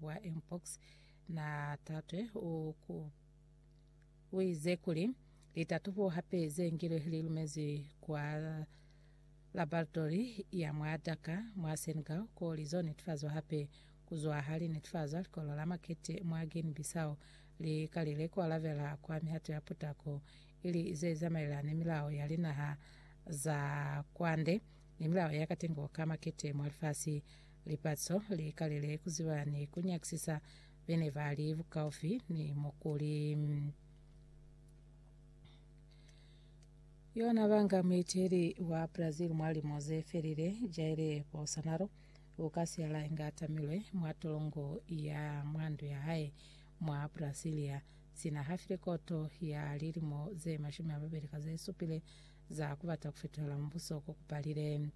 wa mpox na tatwe u ku u ize kuli litatubo hape ze ngilwe li lumezwi kwa laboratori ya mwa Dakar mwa Senegal ko li zo netifazwa hape kuzwa ha li netifazwa likolo la makete mwa Guinea Bissau li kalile ku alabela kwa mihato ya putako ili ze zamaelana ni milao ya linaha za kwande ni milao ya katengo ka makete mwa lifasi Lipatso li kalile ku ziba ni ku nyakisisa be ne ba li bukaufi ni mukuli. Yona banga muiteli wa Brazil mwa limo ze felile, Jair Bolsonaro, u ka siala inge a tamilwe mwa tolongo ya mwa ndu ya hae mwa Brasilia, sina ha file koto ya lilimo ze mashumi a mabeli ka ze supile za ku bata ku fetohela mubuso ko ku palile.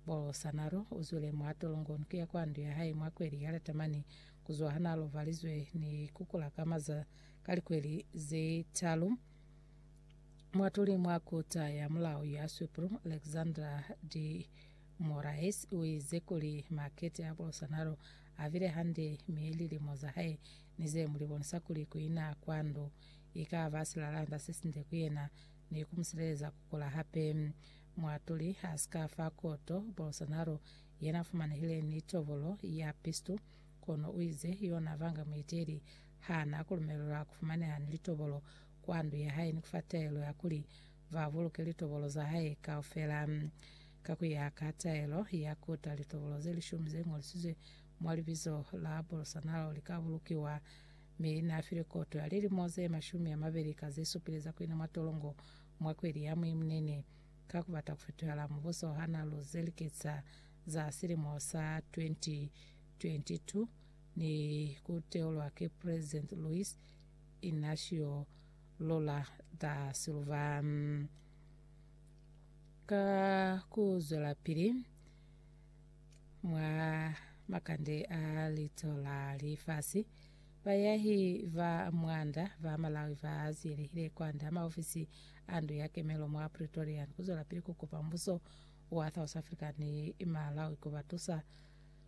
Polo sanalo uzwile mwa tolongoni kuya kwa ndu ya hae mwa kweli ya Latamani kuzwa hana lobalizwe ni kukula ka maza ka likweli ze talu. Mwatuli mwa kota ya mulao ya Swipru, Alexandra de Moraes, uize kuli makete a Polo sanalo avile hande mi lilimo za hae ni ze muli bonisa kuli kuina kwa ndu ikaba silalanda sesinde ku yena ni kumusileleza kukula hape. Muatuli ha si ka fa koto Bolsonaro yena fumanehile ni tobolo ya pistu, kono u ize yona banga muiteli ha na ku lumelelwa ku fumaneha ni litobolo kwa ndu ya hae ni ku fa taelo ya kuli ba buluke litobolo za hae kaufela. Ka ku ya ka taelo ya kota, litobolo ze lishumi ze ngolisizwe mwa libizo la Bolsonaro li ka bulukiwa, mi na file koto ya lilimo ze mashumi a mabeli ka ze supile za ku ina mwa tolongo Mwa kweli ya Mweyi Munene, ka ku bata ku fetohela mubuso ha na lu zelikisa za silimo sa 2022 ni ku teulwa ki President Luiz Inacio Lula da Silva, ka ku zwelapili mwa makande a lito la lifasi, Bayahi ba mwanda ba Malawi ba ziyelehile kwand'a maofisi a ndu ya kemelo mwa Pretoria ni ku zwelapili ku kupa mbuso wa South Africa ni Malawi ku ba tusa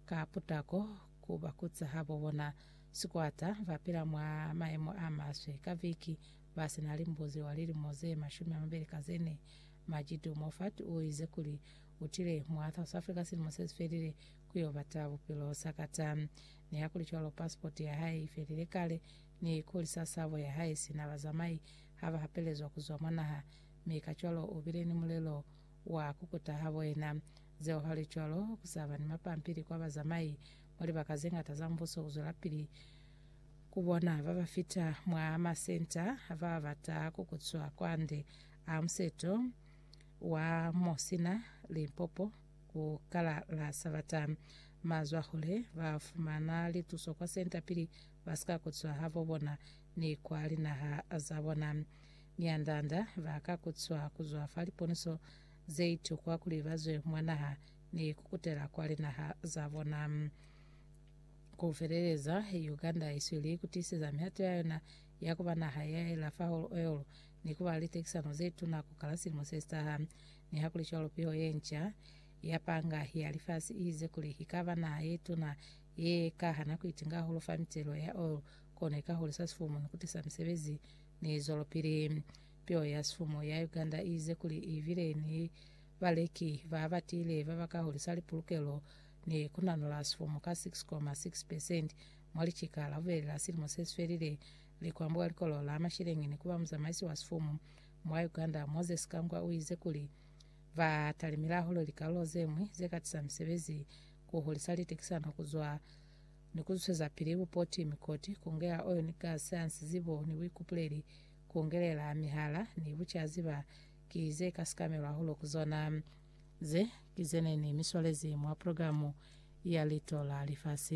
ka putako ku ba kuca habo bona sikwata ba pila mwa mayemo a maswe ka viki ba si na limbuzi wa lilimo ze mashumi a mabeli ka ze ne. Majidu Moffat u ize kuli u tile mwa South Africa silimo se si felile ku yo bata bupilo sakata. Nihakuli-cwalo, pasipoti ya hae i felile kale, mi kuli sa sabo ya hae sina bazamai ha ba hapelezwa ku zwa mwa naha, mi kacwalo u bile ni mulelo wa ku kuta habo yena. Zeo halicwalo, ku sa ba ni mapampili kwa bazamai mwa libaka ze ñata za Mubuso ku zwelapili ku bona ba ba fita mwa masenta a ba bata ku kutswa kwande a museto wa mo sina limpopo. Ku kala la Sabata, mazwahule ba fumana lituso kwa senta pili ba si ka kutswa ha bo bona ni kwa linaha za bona. Mianda-anda ba ka kutswa ku zwa fa liponiso ze itukwa kuli ba zwe mwa naha ni ku kutela kwa linaha za bona. Ku feleleza, Uganda i sweli ku tiiseza mihato ya yona ya ku ba naha ya ela fa holo-o-holo ni ku ba litekisano ze tuna ku kala silimo se si taha. Nihakulicwalo, piho ye nca ya panga ya lifasi i ize kuli i ka ba naha ye tuna ye ka hana ku itinga hahulu fa mitelo ya oil, kono i ka hulisa sifumu ni ku tisa misebezi ni zwelopili. Piho ya sifumu ya Uganda i ize kuli i bile ni baleki ba ba tiile ba ba ka hulisa lipulukelo ni ku nanula sifumu ka 6,6 percent mwa licika la bubeli la silimo se si felile. Likwambo ka likolo la masheleñi ni ku ba muzamaisi wa sifumu Mwa Uganda, Moses Kangwa uize kuli ba talimile hahulu likalulo zeñwi zekatisa misebezi, kuhulisa litekisano kuzwa ni kuzwisezapili bupoti, mikoti, kungela oyo ni gas, hansi zibo ni buikupuleli, kungelela mihala ni bucazi ba ki ze ka sikamelwa hahulu ku zona. Ze ki zene ne mi swalezi mwa programu ya Lito la Lifasi.